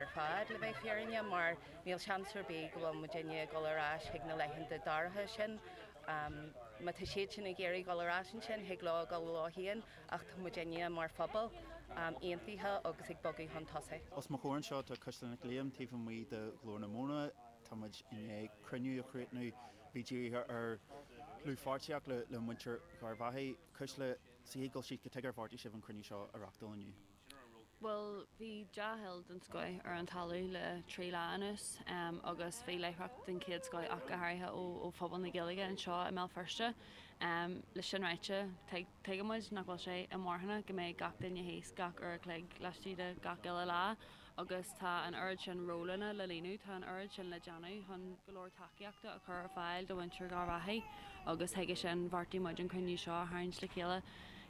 ar fad, le bheith fírinne, mar níl seans ar bith go bhfuil muidinne ag dul ar ais chuig na laethanta dorcha sin. Má tá siad sin ag iarraidh dul ar ais ansin, thig leo a dhul leo féin, ach tá muidinne, mar phobal, aontaithe agus ag bogadh chun tosaigh. Os mo chomhair anseo tá Cuisle Nic Liam, taobh amuigh de Ghlór na Móna. Tá muid i ndiaidh cruinniú a chríochnú a bhí dírithe ar dhlúthpháirtíocht le muintir Gharbh Achaidh, Cuisle, sa chéad dul síos cad chuige ar bheartaigh sibh an cruinniú seo a reachtáil inniu. Bhuel, bhí dea-thoil den scoith ar an talamh le trí lá anuas, agus bhí láithreacht den chéad scoith ach go háirithe ó phobal na Gaeilge anseo i mBéal Feirste. Leis sin ráite, tuigeann muid nach bhfuil sé inmharthana go mbeidh gach duine thíos gach uair a chloig laistigh de gach uile lá, agus tá an oiread sin rólanna le líonadh, tá an oiread sin le déanamh chun go leor tacaíochta a chur ar fáil do mhuintir Gharbh Achaidh, agus chuige sin bheartaigh muid an cruinniú seo a tharraingt le chéile,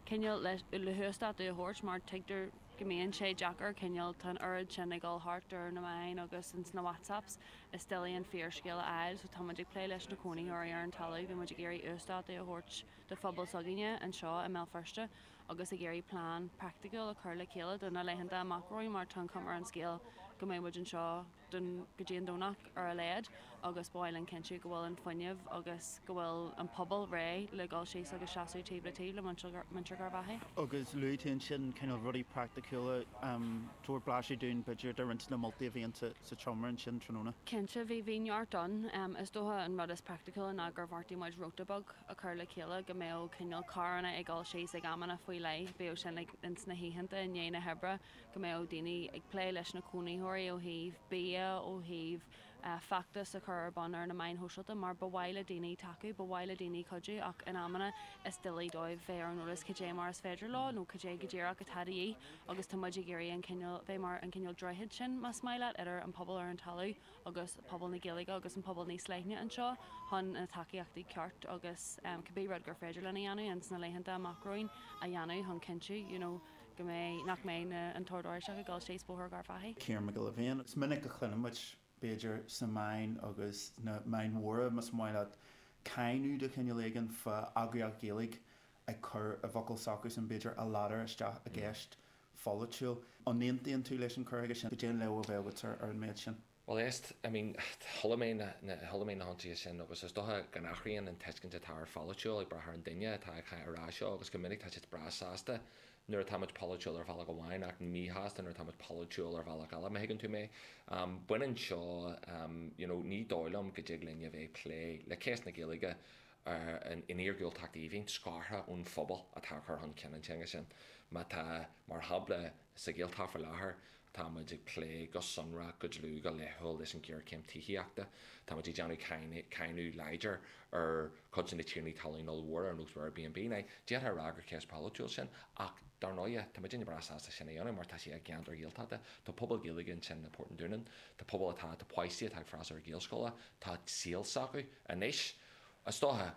cineál le huasdátú a thabhairt, mar tuigtear go mbíonn sé deacair, cineál tá an oiread sin ag dul thart ar na meáin agus ins na WhatsApps is doiligh an fíorscéal a fháil, so tá muid ag plé leis na cónaitheoirí ar an talamh, bhí muid ag iarraidh uasdátú a thabhairt do phobal s'againne anseo i mBéal Feirste, agus ag iarraidh plean praiticiúil a chur le chéile do na laethanta amach romhainn mar tá an chuma ar an scéal go mbeidh muid anseo go dtí an Domhnach ar a laghad agus ba mhaith linn cinntiú go bhfuil an fuinneamh agus go bhfuil an pobal réidh le dhul síos agus seasamh taobh le taobh le muintir Gharbh Achaidh. Agus luaigh tú ansin cineál rudaí praiticiúla, tabhair blaiseadh dúinn b'fhéidir de roinnt de na moltaí a bhí déanta sa tseomra ansin tráthnóna. Cinnte, bhí neart ann. Is dócha an rud is praiticiúla ná gur bheartaigh muid róta beag, a chur le chéile go mbeadh cineál carranna ag dul síos ag amanna faoi leith, bíodh sin ag, ins na hoícheanta i ndiaidh na hoibre, go mbeadh daoine ag plé leis na cónaitheoirí ó thaobh bia, ó thaobh feachtas a chur ar bun ar na meáin shóisialta mar ba mhaith le daoine tacú, ba mhaith le daoine cuidiú ach in amanna is doiligh dóibh bheith ar an eolas cad é mar is féidir leo nó cad é go díreach atá de dhíth agus tá muid ag iarraidh an cineál, bheith mar an cineál droichead sin más maith leat idir an pobal ar an talamh agus pobal na Gaeilge agus an pobal níos leithne anseo chun na tacaíochtaí ceart agus cibé rud gur féidir linn a dhéanamh in sna laethanta amach romhainn a dhéanamh chun cinntiú you know go mbeidh nach mbeidh na an tOrd Oráisteach ag dul síos Bóthar Gharbh Achaidh. Ciarán Mac Giolla Bhéin, is minic a chluineann muid, b'fhéidir sna meáin agus sna meáin mhóra más maith leat cáineadh de chineál éigin fá eagraíocht Ghaeilge ag cur i bhfocail s'acusan b'fhéidir, a ladar isteach i gceist pholaitiúil. An aontaíonn tú leis an chur chuige sin? Cad é an léamh a bheadh agat ar an méid sin? Bhuel, éist, I mean, chuala mé na, chuala mé na hionsaithe sin agus is dócha go n-athraíonn an tuiscint atá ar pholaitiúil ag brath ar an duine atá á rá seo agus go minic tá siad breá sásta nuair atáimid polaitiúil ar bhealach amháin ach míshásta nuair atáimid polaitiúil ar bhealach eile, má thuigeann tú mé. Baineann seo, you know, ní dóigh liom go dtig linn a bheith ag plé le cás na Gaeilge, ann in iargúltacht aoibhinn, scartha ón phobal atá ag cur chun cinn an teanga sin. Má tá, mar shampla, sa Ghaeltacht faoi láthair, tá muid ag plé go sonrach, go dlúth, go laethúil leis an ghéarchéim tithíochta. Tá muid ag déanamh cáineadh láidir ar chuid de na tiarnaí talún ollmhóra ar nós Airbnb. D'fhéadfá a rá gur ceist pholaitiúil sin, ach dar ndóighe, tá muidinne breá sásta sin a dhéanamh mar tá sé i gceantar Gaeltachta. Tá pobal Gaeilge ansin i bPort an Dúnáin, tá pobal atá, tá páistí atá ag freastal ar Ghaelscoil, tá saol s'acu anois. Is dócha,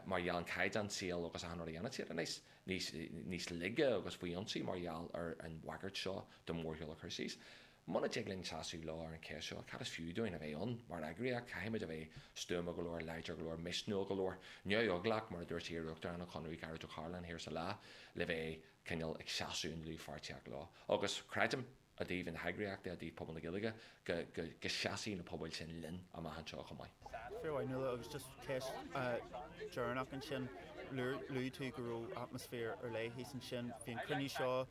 mar gheall an caighdeán saoil agus achan rud a dhéanann siad anois, níos, níos laige agus faoi ionsaí mar gheall ar an bhagairt seo de mórshiúl a chur síos. Muna dtig linn seasamh leo ar an cheist seo, cad is fiú dúinn a bheith ann mar eagraíocht? Caithfimid a bheith stuama go leor, láidir go leor, misniúil go leor, neamheaglach, mar a dúirt iar-Uachtarán an Chonradh, Gearóid Ó Cairealláin, thiar sa lá, le bheith cineál ag seasamh i ndlúthpháirtíocht leo. Agus creidim. i dtaobh na heagraíochta, i dtaobh pobal na Gaeilge, go seasfaidh na pobail sin linn amach anseo chomh maith. Fionnuala. Agus just ceist dheireanach ansin, luaigh tú go raibh atmaisféar ar leith thíos ansin. Bhí an cruinniú seo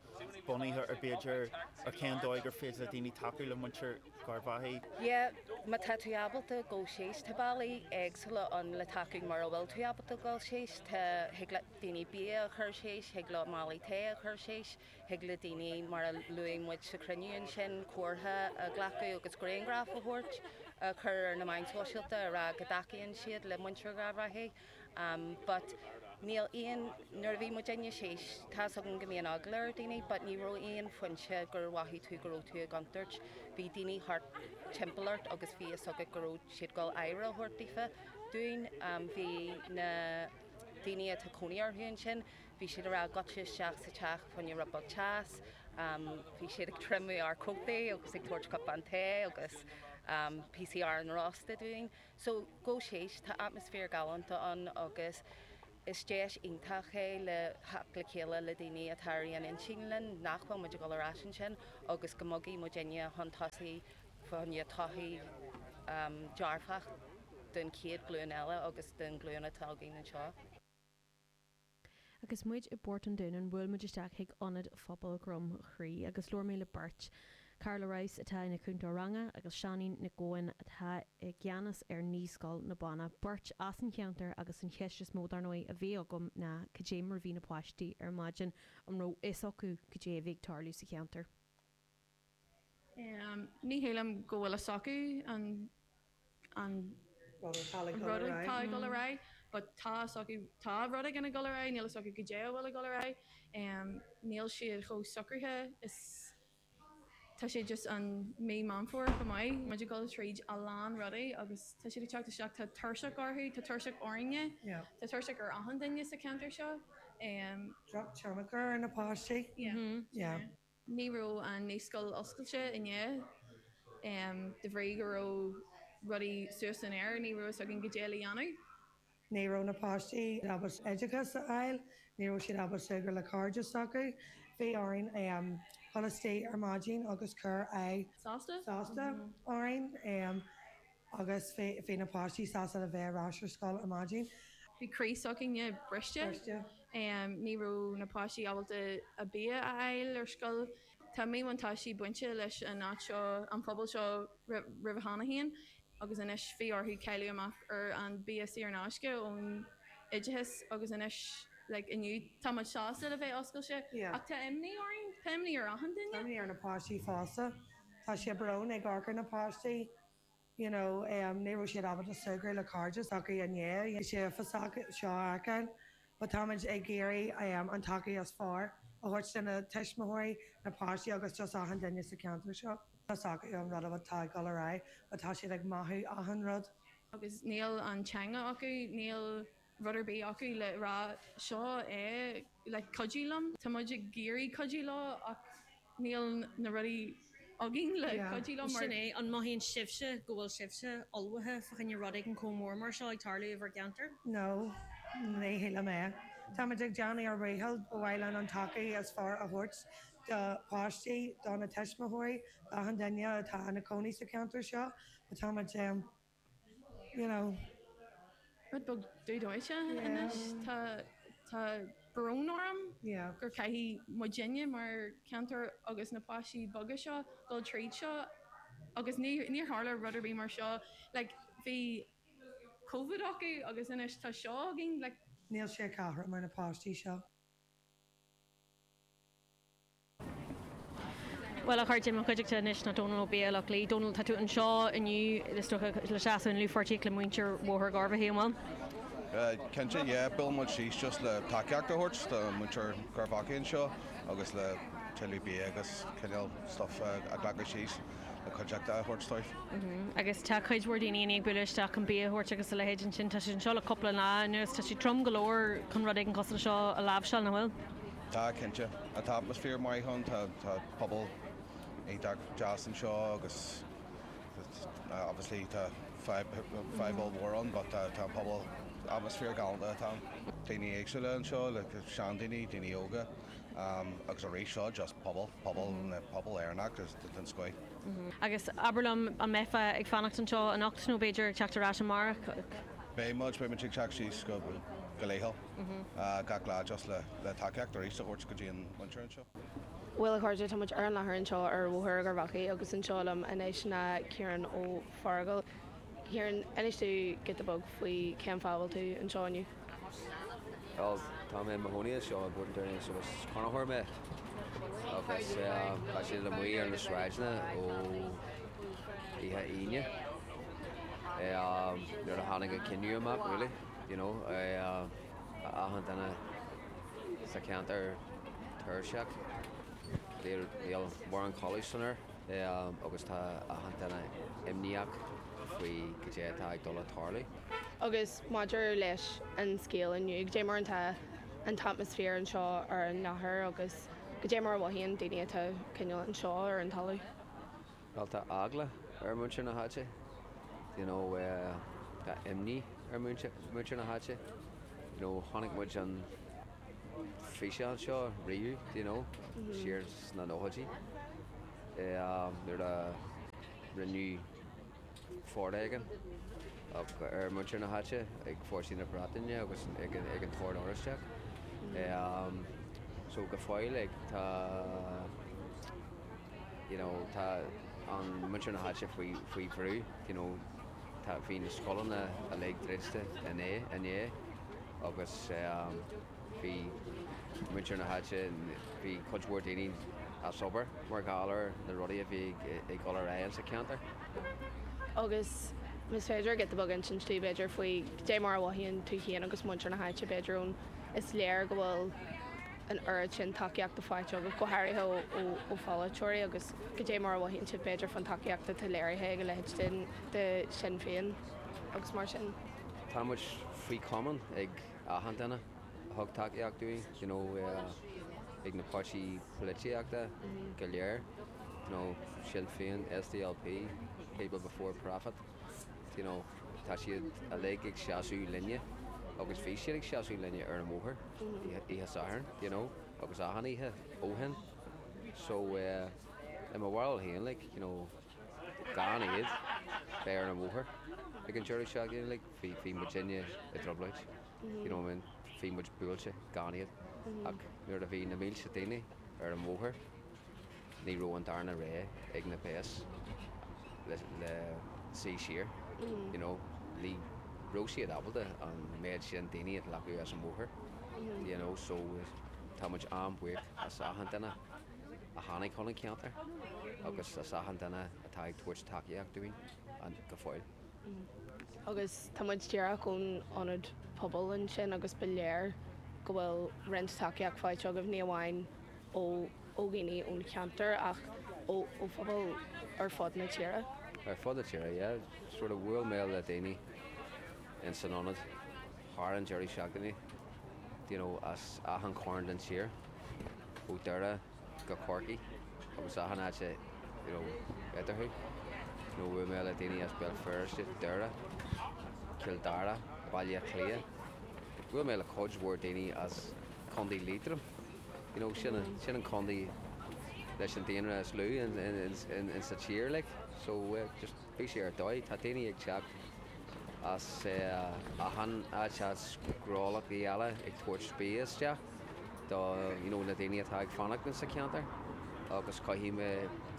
bunaithe ar b'fhéidir ar cén dóigh gur féidir le daoine tacú le muintir Gharbhachaidh. Yeah, má tá tú ábalta dul síos, tá bealaí éagsúla ann le tacú mura bhfuil tú ábalta dul síos. Tá, thig le daoine bia a chur síos, thig leo málaí tae a chur síos. Thig le daoine, mar a luaigh muid sa chruinniú ansin, comhartha a ghlacadh agus grianghraif a thabhairt, a chur ar na meáin shóisialta, a rá go dtacaíonn siad le muintir Gharbhachaidh. But níl aon, nuair a bhí muidinne síos, tá's agam go mbíonn eagla ar dhaoine, but ní raibh aon phointe gur mhothaigh tú go raibh tú i gcontúirt. Bhí daoine thart timpeall ort agus bhí fhios agat go raibh siad dul aire a thabhairt daofa, dúinn. Bhí na daoine atá cónaí orthu ansin. Bhí siad ag rá goitse isteach sa teach fá choinne rud beag teas. Bhí siad ag triomú ár cótaí agus ag tabhairt cupán tae agus píosaí aráin rósta dúinn. So, gabh síos, tá atmaisféar galánta ann agus is deis iontach é le theacht le chéile le daoine atá ar aon intinn linn nach bhfuil muid ag dul ar ais ansin agus go mbogfaidh muidinne chun tosaigh fá choinne todhchaí dearfach don chéad ghlúin eile agus don ghlúin atá againn anseo. Agus muid i bPort an Dúnáin, bhuail muid isteach chuig Ionad Phobal Dhroim Chrí agus labhair mé le beirt, Carla Rouse atá ina cúntóir ranga agus Seáinín Nic Eoin atá i gceannas ar Naíscoil na Banna, beirt as an cheantar agus an cheist is mó dar ndóigh a bhí agam ná cad é mar a bhí na páistí ar maidin, an raibh fhios acu cad é a bhí ag tarlú sa cheantar? Ní shílim go bhfuil a fhios acu an rud atá ag dul ar aghaidh but tá a fhios acu, tá rud éigin ag dul ar aghaidh, níl a fhios acu goidé a bhfuil ag dul ar aghaidh. Níl siad chomh socraithe is tá siad just an Mí Meán Fómhair chomh maith, muid ag dul tríd a lán rudaí agus tá siad ag teacht isteach, tá tuirse orthu, tá tuirse orainne, tá tuirse ar achan duine sa cheantar seo. Drochthionchar ar na páistí. Yeah. Ní raibh an naíscoil oscailte inné de bhrí go raibh rudaí suas san aer, ní raibh a fhios againn goidé le déanamh. Ní raibh na páistí ábalta oideachas a fháil, ní raibh siad ábalta súgradh le cairde s'acu. Bhí orainn dhul isteach ar maidin agus cur aghaidh sásta orainn. agus bhí na páistí sásta le bheith ar ais ar scoil ar maidin. Bhí croí s'againne briste. Ní raibh na páistí ábalta a bia a fháil ar scoil. Tá míbhuntáistí bainte leis an áit seo, an pobal seo roimhe cheana féin agus anois bhí orthu cailleadh amach ar an bia saor in aisce ón oideachas agus anois like inniu tá muid sásta le bheith oscailte ach tá imní orainn, tá imní ar achan duine. Tá imní ar na páistí fosta. Tá sé brónach ag amharc ar na páistí. you know ní raibh siad ábalta súgradh le cairde s'acu i ndiaidh an scéal uafásach seo a fheiceáil but táimid ag iarraidh an tacaíocht is fearr a thabhairt do na tuismitheoirí, na páistí agus just achan duine sa cheantar seo an bhfuil a fhios acu an rud atá ag dul ar aghaidh but tá siad ag mothú achan rud. agus níl an teanga acu, níl. rud ar bith acu le rá 'seo é le cuidiú liom', tá muid ag iarraidh cuidiú leo ach níl na rudaí againn le cuidiú leo. Mar sin é, an mothaíonn sibhse go bhfuil sibhse ullmhaithe fá choinne rud éigin chomh mór mar seo ag tarlú i bhur gceantar? No. Ní shílim é. Táimid ag déanamh ár ndícheall, ba mhaith linn an tacaíocht is fearr a thabhairt do páistí, do na tuismitheoirí, d'achan duine atá ina cónaí sa cheantar seo, but táimid, you know, rud beag dubh dóite anois. Tá, tá brón orm gur caithfidh muidinne mar cheantar agus na páistí beaga seo dul tríd seo agus níor, níor tharla rud ar bith mar seo like bhí Covid acu agus anois tá seo againn like. Níl sé cothrom ar na páistí seo. Bhuel, a chairde, mo chuideachta anois ná Dónall Ó Baoighill-Eachlaí. Dónall, tá tú anseo inniu, is dócha, le seasamh i ndlúthpháirtíocht le muintir Bhóthar Gharbhachaidh, an bhfuil? Cinnte, yeah. Bhuail muid síos just le tacaíocht a thabhairt do muintir Gharbhachaidh anseo agus le tuilleadh bia agus cineál stuff a ghlacadh síos le cuidiú a thabhairt dóibh. Agus tá cuid mhór daoine i ndiaidh bualadh isteach chun bia a thabhairt agus a leithéid ansin. Tá siad anseo le cúpla lá anuas. Tá sé trom go leor chun rud éigin cosúil leis seo a láimhseáil, nach bhfuil? Tá, cinnte. Tá atmaisféar maith ann, tá pobal iontach deas anseo agus obviously tá fadhb ollmhór ann but tá an pobal, atmaisféar galánta atá ann. Daoine éagsúla anseo, seandaoine, daoine óga agus arís seo just pobal, pobal, pobal Éireannach den scoith. Agus abair liom, an mbeifeá ag fanacht anseo anocht nó b'fhéidir ag teacht ar ais amárach? Beidh muid, beidh muid ag teacht síos go laethúil. gach lá just le tacaíocht arís a thabhairt go dtí an mhuintir anseo. Bhuel a chairde, tá muid ar an láthair anseo ar Bhóthar Gharbhachaidh agus anseo liom anois ná Ciarán Ó Fearghaíl. Ciarán, inis dom giota beag faoi cén fáth a bhfuil tú anseo inniu. Bhuel, tá mé i mo chónaí anseo i bPort an Dúnáin agus is cónaitheoir mé agus tá siad amuigh ar na sráideanna ó oíche Aoine nuair a tháinig an cinneadh amach really. you know, achan duine sa cheantar tuirseach, níl mórán codladh san aer agus tá achan duine imníoch faoi cad é atá ag dul a tarlú. Agus maidir leis an scéal inniu, cad é mar atá an t-atmaisféar anseo ar an láthair agus cad é mar a mhothaíonn daoine atá cineál anseo ar an talamh? Bhuel, tá eagla ar mhuintir na háite, you know, tá imní ar mhuintir na háite, you know, chonaic muid an físeán seo roimhe, do you know, siar sna nóchaidí, nuair a rinneadh, foréigean ar mhuintir na háite ag fórsaí na Breataine agus ag an Ord Oráisteach. So go fóill tá you know tá an muintir na háite faoi bhrú you know tá bhí na scoileanna uilig druidte inné agus Bhí muintir na háite, bhí cuid mhór daoine as obair mar gheall ar na rudaí a bhí ag dul ar aghaidh sa cheantar. Agus más féidir giota beag a insint dom, b'fhéidir, faoi cad é mar a mhothaíonn tú féin agus muintir na háite, b'fhéidir, ón Is léir go bhfuil an oiread sin tacaíochta faighte agat, go háirithe ó pholaiteoirí, agus cad é mar a mhothaíonn sibh, b'fhéidir, faoin tacaíocht atá léirithe ag a leithéid de Shinn Féin agus mar sin. Tá muid faoi chomaoin ag. achan duine a thug tacaíocht dúinn, you know ag na páirtí polaitíochta go léir, you know Sinn Féin, SDLP, People Before Profit, you know tá siad uilig ag seasamh linne agus bhí siad ag seasamh linne ar an mbóthar oíche Sathairn you know agus achan oíche ó shin. So, eh i mo bharúil féin like, you know. gan iad bheith ar an bhóthar ag an deireadh seachtaine like bhí bhí muid inné i dtrioblóid you know I mean bhí muid buailte gan iad ach nuair a bhí na mílte daoine ar an bhóthar ní raibh an darna rogha ag na péas ach suí siar you know ní raibh siad ábalta an méid sin daoine a ghlacadh as an mbóthar you know so tá muid an-bhuíoch as achan duine. a tháinig chun an cheantair agus as achan duine atá ag tabhairt tacaíocht dúinn go fóill. Agus tá muid díreach ón ionad pobail ansin agus ba léir go bhfuil roinnt tacaíocht faighte agaibh, ní amháin ó ó dhaoine ón cheantar ach ó ó phobal ar fud na tíre. Ar fud na tíre, yeah. Sort of bhuail mé le daoine in san ionad thar an deireadh seachtaine, do you know, as achan chorn den tír. ó Dhoire go Corcaigh agus achan áit you know eatarthu nó bhuail mé le daoine as Béal Feirste, Doire, Cill Dara, Baile Átha Cliath, bhuail mé le cuid mhór daoine as Contae Liatroim, you know sin an, sin an contae leis an daonra is lú in, in, in, in sa tír like so yeah just. Bhí sé ar dóigh. Tá daoine ag teacht as achan áit, as gnólachtaí eile ag tabhairt bia isteach do you know na daoine atá ag fanacht insa cheantar agus caithfidh mé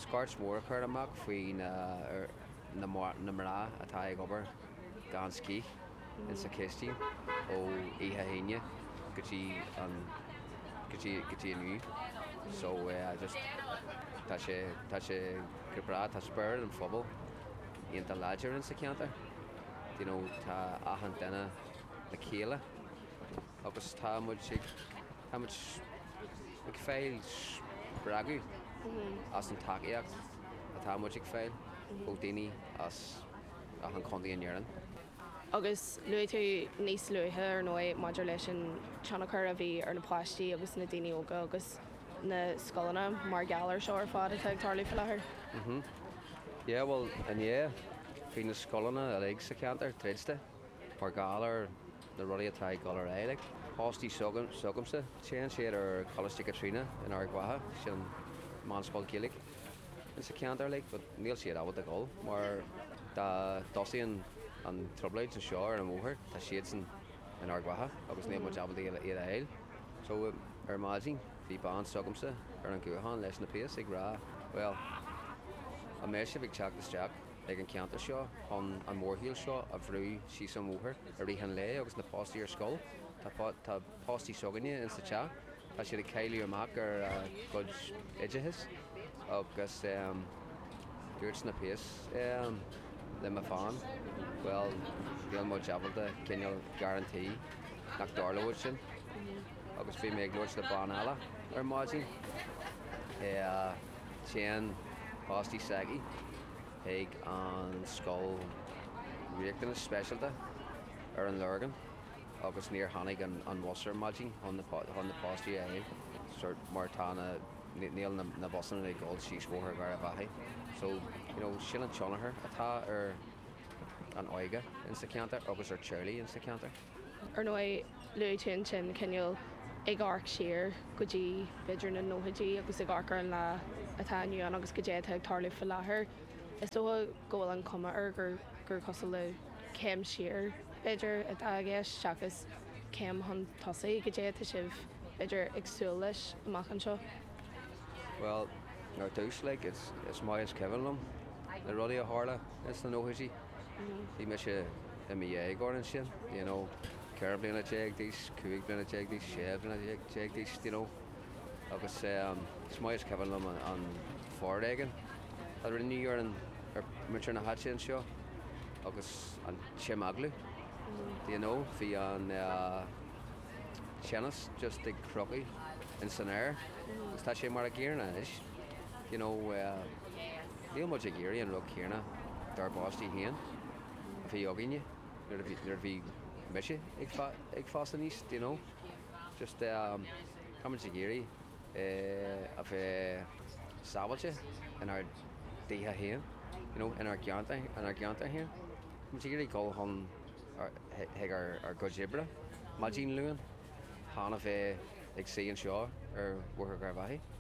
scairt mhór a chur amach faoi na na mná atá ag obair gan scíth. in sa chistín ó oíche hAoine go dtí an go dtí go dtí inniu so yeah just tá sé tá sé go breá tá spirit an phobail iontach láidir in sa ceantar you know tá achan duine le chéile agus tá muid ag tá muid ag fáil spreagadh as an tacaíocht atá muid ag fáil ó daoine as achan chontae in Éirinn. Agus luaigh tú níos luaithe ar ndóigh maidir leis an tionchar a bhí ar na páistí agus na daoine óga agus na scoileanna mar gheall ar seo ar fad atá ag tarlú faoi láthair. Mm-hm. Yeah bhuel inné bhí na scoileanna uilig sa cheantar druidte mar gheall ar na rudaí atá ag dul ar aghaidh like, páistí s'agamsa téann siad ar Choláiste Chaitríona in Ard Mhacha, sin meánscoil Ghaeilge. in sa cheantar uilig but níl siad ábalta dhul mar dá dtosaíonn an trioblóid anseo ar an mbóthar tá siadsan in Ard Mhacha agus níl muid ábalta iad a fháil so ar maidin bhí bean s'agamsa ar an ghuthán leis na péas ag rá bhuel an mbeidh sibh ag teacht isteach ag an gceantar seo chun an mórshiúl seo a bhrú síos an bhóthar i rith an lae agus na páistí ar scoil tá páistí s'againne insa teach, tá siad ag cailleadh amach ar a gcuid oideachais agus dúirt na péas le mo bhean, bhuel, níl muid ábalta cineál guarantee nach dtarlóidh sin. Agus bhí mé ag labhairt le bean eile ar maidin, téann páistí s'aici chuig an scoil riachtanais speisialta ar an Lorgain, agus níor tháinig an bhus ar maidin chun na páistí a fháil so mar tá na níl na busanna ag dul síos bhóthar Gharbh Achaidh so you know sin an tionchar atá ar an óige in sa cheantar agus ar teaghlaigh in sa cheantar. Ar ndóigh luaigh tú ansin cineál ag amharc siar go dtí b'fhéidir na nóchaidí agus ag amharc ar an lá atá inniu ann agus goidé atá ag tarlú faoi láthair. Is dócha go bhfuil an chuma air gur cosúil le céim siar, b'fhéidir, atá i gceist seachas céim chun tosaigh, cad é atá sibh, b'fhéidir, ag súil leis amach anseo? Bhuel, ar dtús, like, is, is maith is cuimhin liom na rudaí a tharla ins na nóchaidí. Bhí mise i mo dhéagóir ansin, you know, ceithre bliana déag d'aois, cúig bliana déag d'aois, sé bliana déag d'aois, you know. agus is maith is cuimhin liom an foréigean a rinneadh ar mhuintir na háite anseo agus an t-imeaglú do you know, bhí an teannas just ar crochadh in san aer agus tá sé mar a gcéanna anois you know, níl muid ag iarraidh an rud céanna dár bpáistí féin a bhí againne nuair a bhí mise ag fás aníos do you know. just eh táimid ag iarraidh eh a bheith sábháilte inár dtithe féin, you know, inár gceantar, inár gceantar féin. Táimid ag iarraidh dhul chun ár, chuig ár, ár gcuid oibre maidin Luain, chan a bheith ag suí anseo ar Bhóthar Gharbh Achaidh.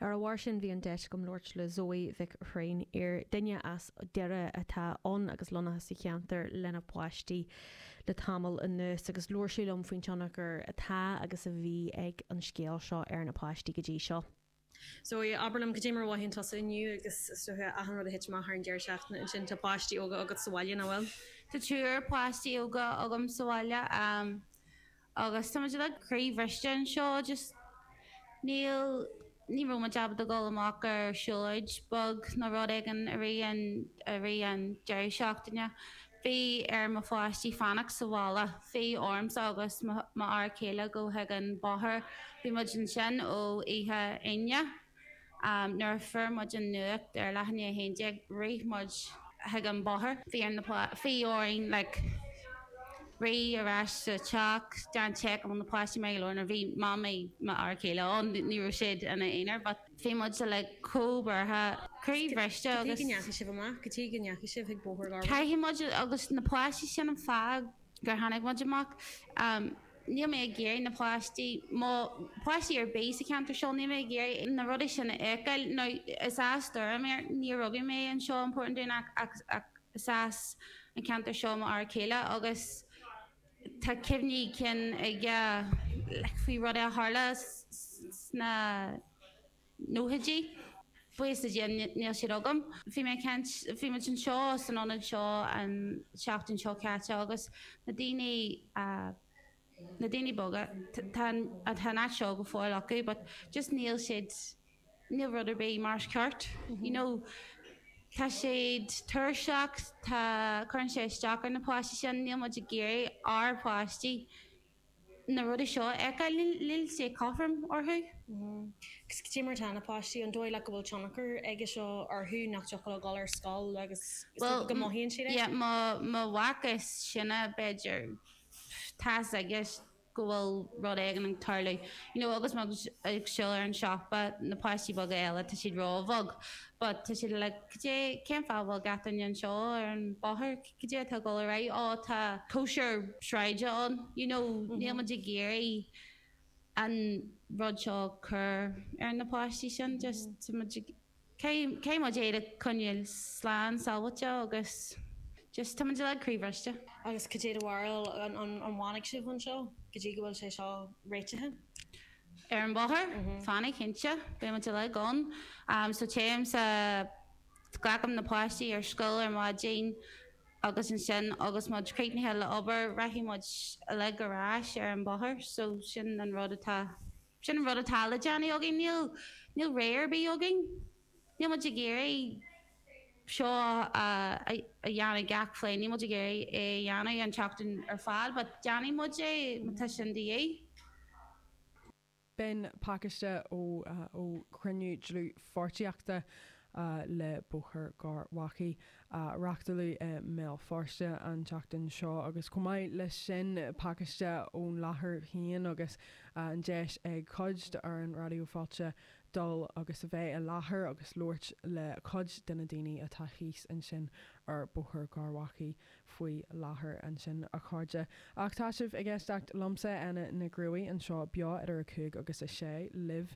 Ar a bharr sin, bhí an deis agam labhairt le Zoe Mhic Thréinfhir, duine as Doire atá ann agus lonnaithe sa cheantar lena páistí. le tamall anuas agus labhair sí liom faoin tionchar atá agus a bhí ag an scéal seo ar na páistí go dtí seo. So, abair liom, cad é mar a mhothaíonn tusa inniu agus, is dócha, achan rud a thit amach thar an deireadh seachtaine sin, tá páistí óga agat sa bhaile, nach bhfuil? Tá triúr páistí óga agam sa bhaile. Agus tá muid like croíbhriste anseo, just níl, ní raibh muid ábalta dul amach ar siúlóid beag nó rud éigin i rith an, i rith an deireadh seachtaine. Bhí ar mo pháistí fanacht sa bhaile, bhí ormsa agus m'fhear céile gabháil chuig an bóthar, bhí muid ansin ó oíche Aoine. Nuair a fuair muid an nuacht ar leath i ndiaidh 11, rith muid chuig an bóthar. Bhí orainn like rith ar ais sa teach, déan check an bhfuil na páistí mar gheall ar bhí mamaí m'fhear céile ann, ní raibh siad ina aonar but bhí muid sa like chomh buartha, croí bhriste agus. Go dtí go ndeachaigh sibh amach, go dtí go ndeachaigh sibh chuig an bhóthar. Cinnte muid agus na páistí sin an fáth. gur tháinig muid amach. Níl mé ag iarraidh na páistí, mo pháistí ar bith sa cheantar seo, níl mé ag iarraidh na rudaí sin a fheiceáil. Now, is as Doire mé, níor rugadh mé anseo i bPort an Dúnáin ach is as an ceantar seo mo fhear céile agus tá cuimhní cinn aige like faoi rudaí a tharla sna, nóchaidí. Buíochas le Dia níl siad agam. Bhí mé ag caint, bhí muid anseo san ionad seo an seachtain seo caite agus na daoine, na daoine boga, tá an, tá an áit seo go fóill acu but just níl siad, níl rud ar bith mar is ceart, you know. Tá siad tuirseach, tá, cuireann sé isteach ar na páistí sin, níl muid ag iarraidh ár bpáistí, na rudaí seo a fheiceáil, níl sé cothrom orthu. Cé mar atá na páistí, an dóigh leat go bhfuil tionchar aige seo orthu, nach dtiocfadh leo dul ar scoil agus is dócha go mothaíonn siad é? Bhuel, mo mhac is sine, b'fhéidir, tá's aige go bhfuil rud éigin ag tarlú, you know agus muid ag siúl chuig an siopa, na páistí beaga eile, tá siad róbhog but tá siad like, cad é, cén fáth a bhfuil gach duine anseo ar an bhóthar? Cad é atá ag dul ar aghaidh? Ó, tá cóisir sráide ann, you know, níl muid ag iarraidh an rud seo cur ar na páistí sin, just tá muid ag, caithfidh muid iad a choinneáil slán sábháilte agus just tá muid uilig croíbhriste. Agus cad é do bharúil, an bhfanfaidh sibh anseo go dtí go bhfuil sé seo réitithe? Ar an mbóthar? Fanfaidh, cinnte. Beidh muid uilig ann. So téim sa Glacaim na páistí ar scoil ar maidin agus ansin agus muid críochnaithe le obair rachaidh muid uilig ar ais ar an mbóthar. So sin an rud atá, sin an rud atá le déanamh againn. Níl, níl rogha ar bith againn. Níl muid ag iarraidh seo a, a dhéanamh gach bliain, níl muid ag iarraidh é a dhéanamh an tseachtain ar fad but déanfaidh muid é má tá sin de dhíth. B'in pacáiste ó ó chruinniú dlúthpháirtíochta le Bóthar Gharbhachaidh, a reachtáladh i mBéal Feirste an tseachtain seo, agus chomh maith leis sin, pacáiste ón láthair féin agus an deis ag cuid d'fhoireann Raidió Fáilte dul agus a bheith i láthair agus labhairt le cuid de na daoine atá thíos ansin ar Bhóthar Gharbhachaidh. faoi láthair ansin, a chairde, ach tá sibh ag éisteacht liomsa, Éanna Mac Cruaidh, anseo beo idir 5 agus 6 libh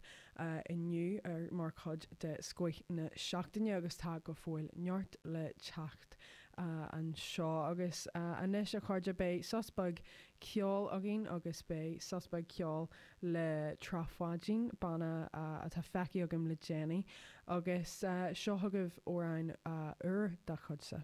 inniu mar chuid de Scoith na Seachtaine agus tá go fóill neart le teacht anseo. Agus anois, a chairde, beidh sos beag ceoil againn agus beidh sos beag ceoil le Trá Pháidín, banna atá feicthe agam le déanaí, agus seo chugaibh amhrán úr dá chuidse.